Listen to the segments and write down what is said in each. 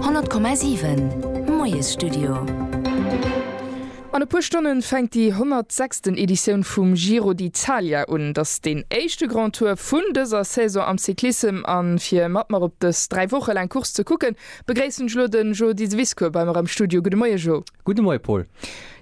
100,7 Moiesstudio An e puer Stonnen fänkt déi 106. Editioun vum Giro d'Italia un. Et ass deen éischte Grand Tour vun dëser Saison am Cyclissem. A fir mat mer op dës 3 Woche laang Course ze kucken, begréissen ech elo den Jo Diseviscourt bei mer am Studio. Gudde Moie Jo. Gudde Moie Paul.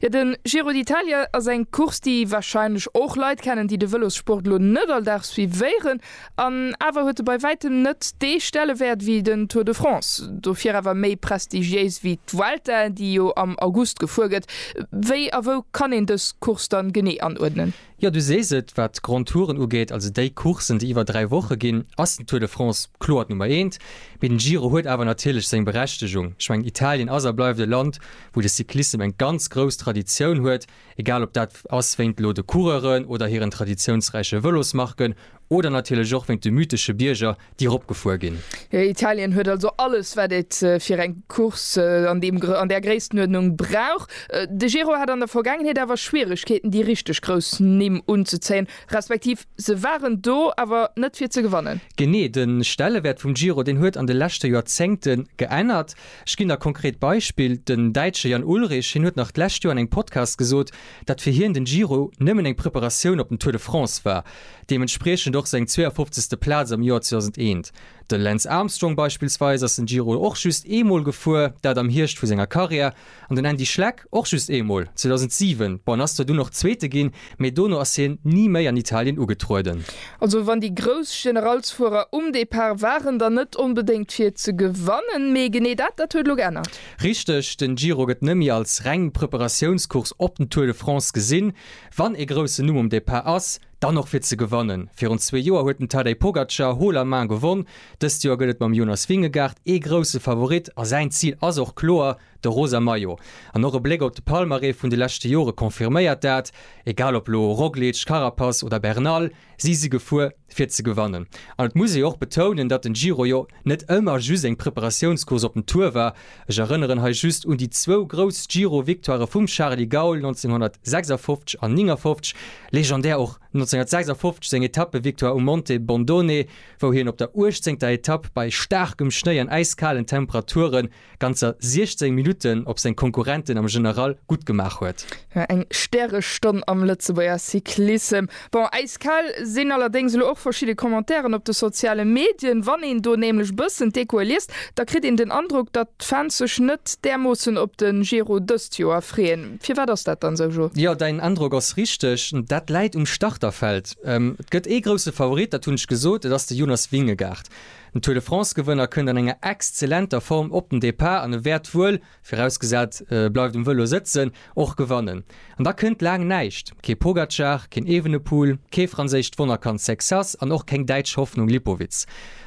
Jo, de Giro d'Italia ass eng Course, déi wahrscheinlech och Leit kennen, déi de Vëlossport elo net all Dag suivéieren. An awer huet e bei wäitem net dee Stellewäert wéi den Tour de France, dofir awer méi prestigiéis wéi d'Vuelta, déi jo am August gefuer gëtt. Wéi a wou kann een dës Course dann genee anuerdnen? Jo, du sees et, wat d'Grands Touren ugeet, also déi Courssen, déi iwwer dräi Woche ginn, ass den Tour de France kloer d'Nummer eent. Mee den Giro huet awer natierlech seng Berechtegung. Ech mengen, Italien ass a bleift e Land, wou de Cyclissem eng ganz grouss Traditioun huet. Egal ob dat ass wéint elo de Coureuren oder hiren traditiounsräiche Vëlosmarken oder natierlech och wéint de mythesche Bierger, déi eropgefuer ginn. Italien huet also alles, wat et fir eng Course an deem, an där Gréisstenuerdnung brauch. De Giro hat an der Vergaangenheet awer Schwieregkeeten, déi richteg grouss Nimm unzezéien, respektiv se waren do, awer net fir ze gewannen. Genee, de Stellewäert vum Giro, deen huet an de leschte Joerzéngte geännert. Ech ginn der konkret Beispill, den Däitsche Jan Ullrich, hien huet nach d'lescht Joer an engem Podcast gesot, datt fir hien den Giro nëmmen eng Preparatioun op den Tour de France war, deementspriechend och seng 52. Plaz am Joer 2001. De Lance Armstrong beispillsweis ass den Giro och just eemol gefuer, dat am Hierscht vu senger Karriär, an den Andy Schleck och just eemol, 2007. Bon, en ass zwar dunn och Zweete ginn, mee dono ass hien ni méi an Italien ugetrueden. Also wann déi grouss Generalsfuerer um Depart waren, dann net onbedéngt fir ze gewannen, mee genee dat, dat huet elo geännert. Richteg, den Giro gëtt net méi als reng Preparatiounscourse op den Tour de France gesinn. Wann ee groussen Numm um Depart ass, dann och fir ze gewannen. Virun zwee Joer huet den Tadej Pogacar haut la main gewonn, dëst Joer gëtt et mam Jonas Vingegaard ee grousse Favorit a säin Zil ass och kloer, De rosa Maillot an och e Bléck op de Palmarès vun de leschte Jore confirméiert dat. Egal op elo Roglic, Carapaz oder Bernal, si si gefuer fir ze gewannen. An et muss ee jo och betounen, datt den Giro jo net ëmmer just eng Preparatiounscourse op den Tour war. Ech erënneren hei just un déi zwou grouss Giro-Victoirë vum Charly Gaul 1956 an 59, legendär och 1956 seng Etappe-Victoire um Monte Bondone, wou hien op der uechtzéngter Etapp bei staarkem Schnéi an äiskalen Temperaturen ganzer 16 Minutten op seng Konkurrenten am General gutt gemaach huet. Jo, eng Stärestonn am Lëtzebuerger Cyclissem. Bon, äiskal sinn allerdéngs elo och verschidde Commentairen op de soziale Medien. Wann een do nämlech bëssen d'Echoe liest, da kritt een den Androck, datt d'Fans sech net därmoossen op de Giro dëst Joer freeën. Firwat ass dat dann esou, Jo? Jo, däin Androck ass richteg. Dat läit um Starterfeld. Et gëtt ee grousse Favorit, dat hunn ech gesot, et ass de Jonas Vingegaard. Den Tour de France-Gewënner kënnt an enger exzellenter Form op den Depart an e wäert wuel, virausgesat e bleift um Vëlo sëtzen, och gewannen. An da kënnt laang näischt, kee Pogacar, keen Evenepoel, kee franséischt Wonnerkand Sexas an och keng däitsch Hoffnung Lipowitz.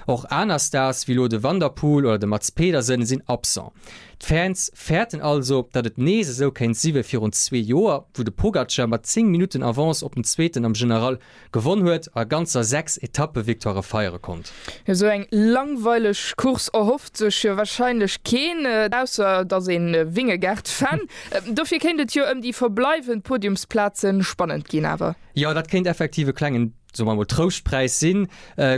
Och aner Stars wéi elo de Van der Poel oder de Mads Pedersen sinn absent. D'Fans fäerten also, datt et nees esou kéint si wéi virun zwee Joer, wou de Pogacar mat 10 Minutten Avance op den Zweeten am General Gewonn huet a ganzer 6 Etappe-Victoirë feiere konnt. Esou eng langweileg Course erhofft sech jo wahrscheinlech keen, ausser et ass een Vingegaard-Fan. Dofir kéint et jo ëm déi verbleiwend Podiumsplaze spannend ginn awer. Jo, dat kéint effektiv e klengen, soe mer emol, Trouschtpräis sinn.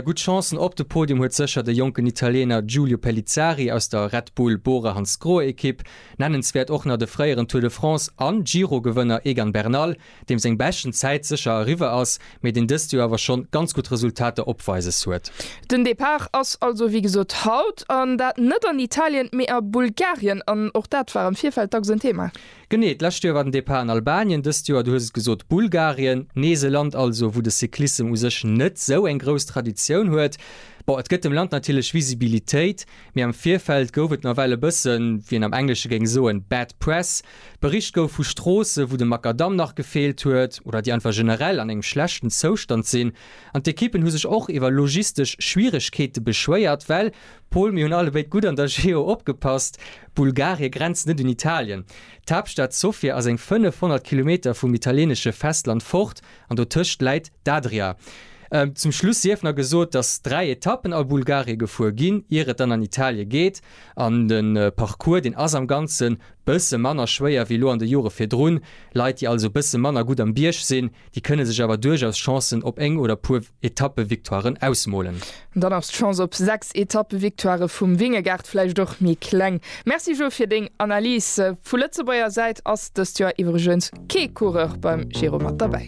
Gutt Chancen op de Podium huet sécher de jonken Italiener Giulio Pellizzari aus der Red Bull Bora-Hansgrohe-Ekipp. Nennenswäert och nach de fréieren Tour de France an Giro-Gewënner Egan Bernal. deem seng beschten Zäit sécher eriwwer ass, mee deen dëst Joer awer schonn ganz gutt Resultater opweises huet. Den Depart ass also wéi gesot haut, an dat net an Italien, mee a Bulgarien, an och dat war am Virfeld dacks en Thema. Genee, d'lescht Joer war den Depart an Albanien, dëst Joer, du hues et gesot, Bulgarien, nees e Land also, wou de Cyclissem u sech net sou eng grouss Traditioun huet. Bon, et gëtt dem Land natierlech Visibilitéit, mee am Virfeld gouf et nawell e bëssen, wéi een am Englesche géing soen, bad press. Bericht gouf vu Stroosse wou de Makadamm nach gefeelt huet, oder déi einfach generell an engem schlechten Zoustand sinn. An d'Ekippen hu sech och iwwer logistesch Schwieregkeete beschwéiert, well, Pol, mir hunn allebéid gutt an der Geo opgepasst, Bulgarie grenzt net un Italien. D'Haaptstad Sofia ass eng 500 Kilometer vum italienesche Festland fort, an dotëscht läit d'Adria. Zum Schluss sief nach gesot, datt 3 Etappen a Bulgarie gefuer ginn, ier et dann an Italie geet. An de Parcours, deen ass am Ganze bësse manner schwéier wéi elo an de Jore virdrun. Leit, déi also bësse manner gutt am Bierg sinn, déi kënne sech awer duerchaus Chancen op eng oder puer Etappe-Victoiren ausmolen. Dann ass d'Chance op 6 Etappe-Victoire vum Vingegaard vläicht och méi kleng. Merci Jo fir deng Analys. Vu Lëtzebuerger Säit ass dëst Joer iwwregens kee Coureur beim Giro mat derbäi.